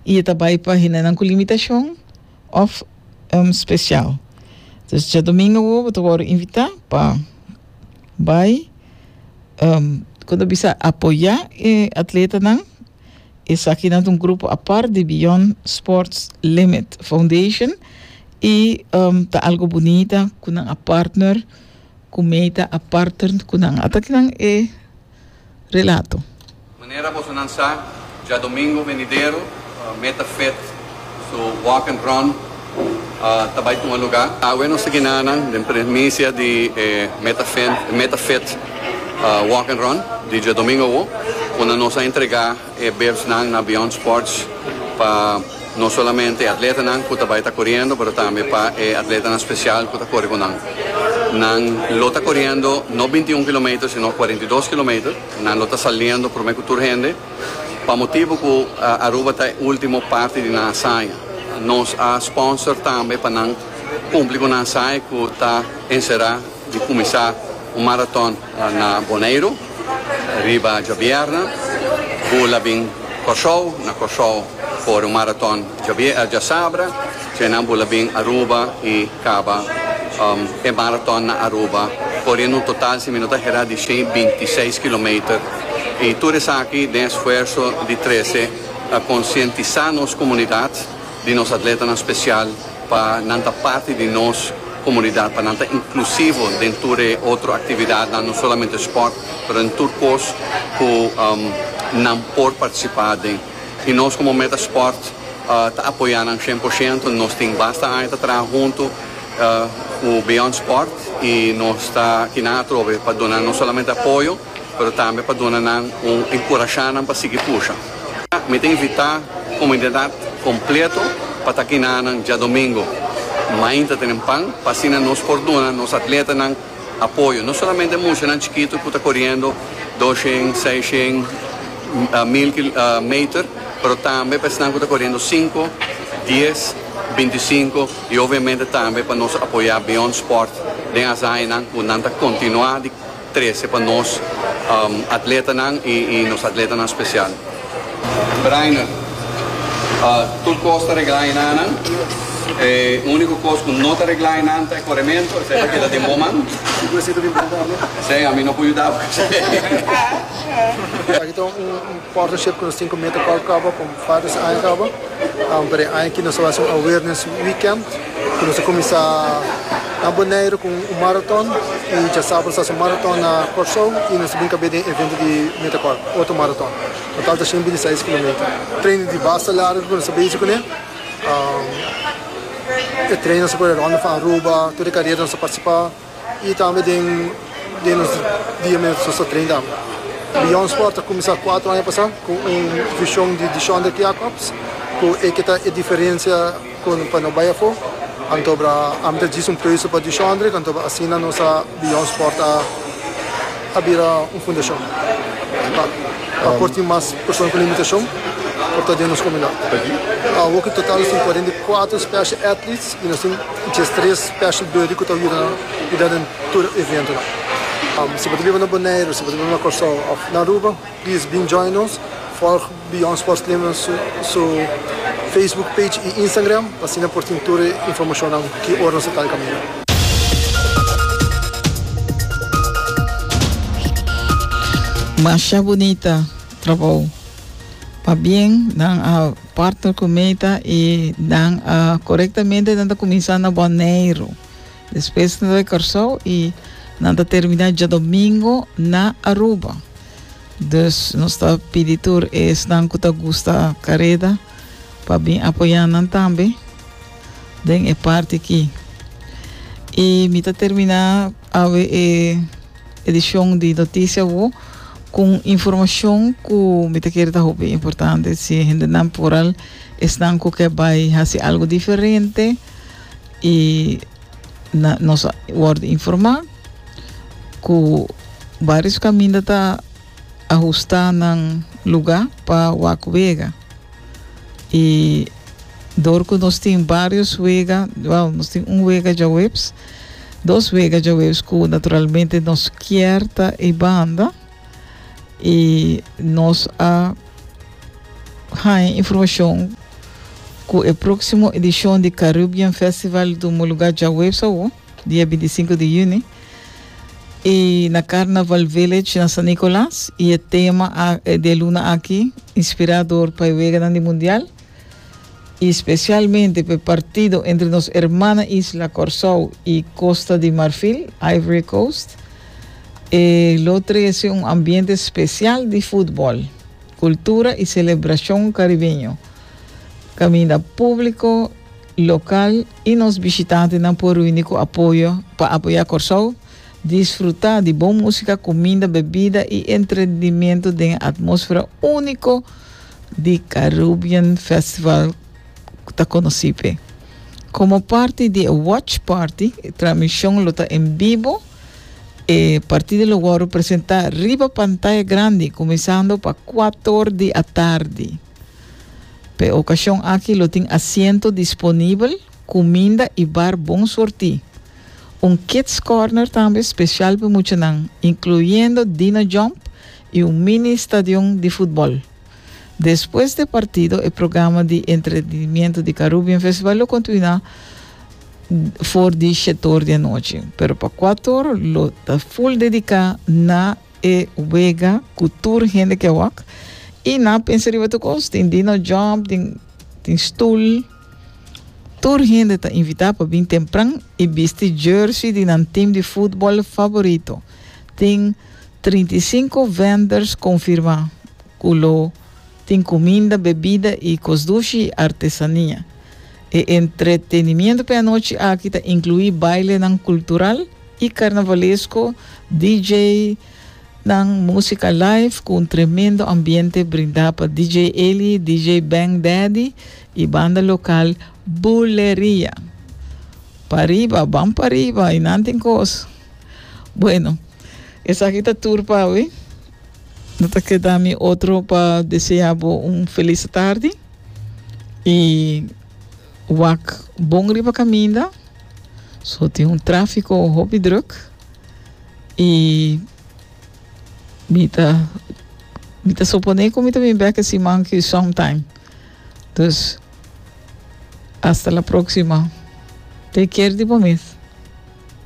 I e ta bai pa hendenan ku limitashon òf spesial. Dus djadumingu awo bo ta wòrdu invitá pa bai kon ta bisa apoyá e atletanan. Esaki nan ta un grupo apart di Beyond Sports Limit Foundation i ta algu bunita ku nan a partner ku meta a parter ku nan. Ata kinan e. Relato. Manera bosonan sa, djadomingo benidero Meta Fit su Walk and Run ta bai tuma lugá. Awe nos ta ginanan den primisia di e Meta Fit Walk and Run di djadomingo awo, unda nos a entregá. E bebsnan na Beyond Sports pa no solamente e atletanan cu ta bay ta coriendo pero tambe pa e atletanan special cu ta cori cu nan. Nan lo ta coriendo no binti y un kilometer sino cuarenta y dos kilometer. Nan lo ta saliendo prome cu tur hende pa motibo cu Aruba ta e ultimo parti di nan hasaña. Nos a sponsor tambe pa nan cumpli cu nan hasaña cu ta encera di cuminsa un maraton. Na Boneiru riba djabièrnè Bull a bin Kòrsou, na Kòrsou kore un maraton djasabra, djènan Bull a bin Aruba i kaba e maraton na Aruba koriendo un total si mi no ta herá di shen i binti seis kilometer i tur esaki den esfuerso di Trece ta konsientisá nos komunidat di nos atletanan spesial pa nan ta parti di nos komunidat, pa nan ta inklusivo den tur e otro aktividatnan, no solamente sport, pero den tur kos ku nan por partisipá den. I nos komo Meta Sport ta apoyá nan shen por shento, nos tin basta aña ta traha huntu ku Beyond Sport i nos ta kiná atrobe pa duna no solamente apoyo, pero tambe pa duna nan un enkurashá nan pa sigui pusha. Mi ta invitá komunidat kompleto pa ta kinanan djadomingu. Mainta tenen pan pa asina nos por duna nos atletanan apoyo, no solamente muchanan chikitu ku ta koriendo doshen, seishen, mil meter, pero tambe pa esnan ku ta koriendo sinku, dies, bintisinku i obviamente tambe pa nos apoyá Beyond Sport den asañanan ku nan ta kontinuá di trece pa nos atletanan y nos atletanan special. Breiner, Tur cos ta regla enanan. E unico cos cu no ta regla enan ta e coremento, esey ta keda den bo man. Esey a mi no por yuda bo esey. Partnership cu nos tin cu Meta Colcaba pa un par di aña caba. Pero e aña aki nos a haci un awareness weekend cu nos a cuminsa na Boneiru cu un marathon y diasabra nos a haci un marathon na Corso y nos a bin cabe den evento di Meta Col, otro marathon. Total ta shin binti seis kilometer. Training di basta largo cu nos a bezi cune. E training nos a pone Ronde van Aruba, tur e carera nos a participa. I tambe den den nos dia mi so sa train tambe. Beyond Sport a kuminsá kuatro aña pasá ku un vishon di Dishon Rick Jacobs ku e ke ta e diferensia kon pa no bai afó. Anto bra ami ta djis un preuso pa Dishon Rick anto bra asina nos a Beyond Sport a a bira un fundashon pa pa por tin mas persona ku limitashon por ta den nos komunidat. Awo ku total nos tin kuarenta i kuatro special athletes i nos tin Dje tres special body cu ta yuda cuida den tur eventonan. Si bo ta biba na Boneiru, si bo ta biba na Corsou of na Aruba, please been join nos. Volg Beyond Sports Lima su Facebook page y Instagram pa asina por tin tur e informacionnan ki ora nos ta taiga mira. Masha bunita trabou. Pabien nan a. Partner cu meta y nan a corectamente nan ta cuminsa na Boneiru. Despues nan ta bay Corsou y nan ta termina Djadomingo na Aruba. Dus nos ta pidi tur esnan cu ta gusta careda pa bin apoya nan tambe den e parti aki. Y mi ta termina awe e. edishon di Noticia Wo kun informashon ku mi ta kere ta hopi importante si e hendenan por al esnan ku ke bai hasi algu diferente i na nos a wòrdu informá ku varios kaminda ta ahustá nan lugá pa wak wega i dor ku nos tin varios wega, wèl nos tin un wega djaweps. Dos wega djaweus ku naturalmente nos kier ta e banda i nos a haña informashon ku e próksimo edishon di Caribbean Festival ta un lugá djaweus awo, dia binti i sinku di yüni, i na Carnaval Village na San Nicolas i e tema a e dialuna aki inspirá dor pa e weganan di mundial. y specialmente p'e partido entre nos hermana isla Corsou y Costa di Marfil, Ivory Coast, e lo trece un ambiente special di futbol, cultura y celebracion caribeño, caminda publico local y nos bishitantenan por reuni cu apoyo pa apoya Corsou disfruta di bon musica, cuminda, bebida y entrenimento den e atmosfera unico di Caribbean Festival cu ta conoci pe. Como parti di e watch party, e transmision lo ta en bibo. E partido lo worde presenta riba pantaya grandi cuminsando pa cuator di atardi. P'e ocasion aki lo tin asiento disponibel. Cuminda y bar bon sorti. Un kids corner tambe special pa muchanan, incluyendo Dino Jump y un mini stadion di futbol. Despues de partido e programa di entretenimiento di Carubbean Festival lo contuina for di shetor di anochi, pero pa cuator lo ta full dedica na e wega cu tur hende ke wak y na pensa riba tur cos, tin Dino Jump, tin stoel. Tur hende ta invitá pa bin tempran i bisti jersey di nan tim di futbòl faborito. Tin trinta i sinku venders konfirmá ku lo tin kuminda, bebida i kosdushi artesania. E entretenimiento p'e anochi aki ta inkluí bailenan kultural i karnavalesko, DJnan músika live ku un tremendo ambiente brindá pa DJ Eli, DJ Bang Daddy, I banda lokal Buleria. Pariba, ban pariba i nan tin kos. Bueno, esaki ta tur pa awe. No ta keda mi otro pa desea bo un felis tardi i wak bon riba kaminda. So tin un trafiko hopi druk i mi ta mi ta supone ku mi ta bin bek e siman ki sometime. Dus, hasta la próxima. Take care di bo mes.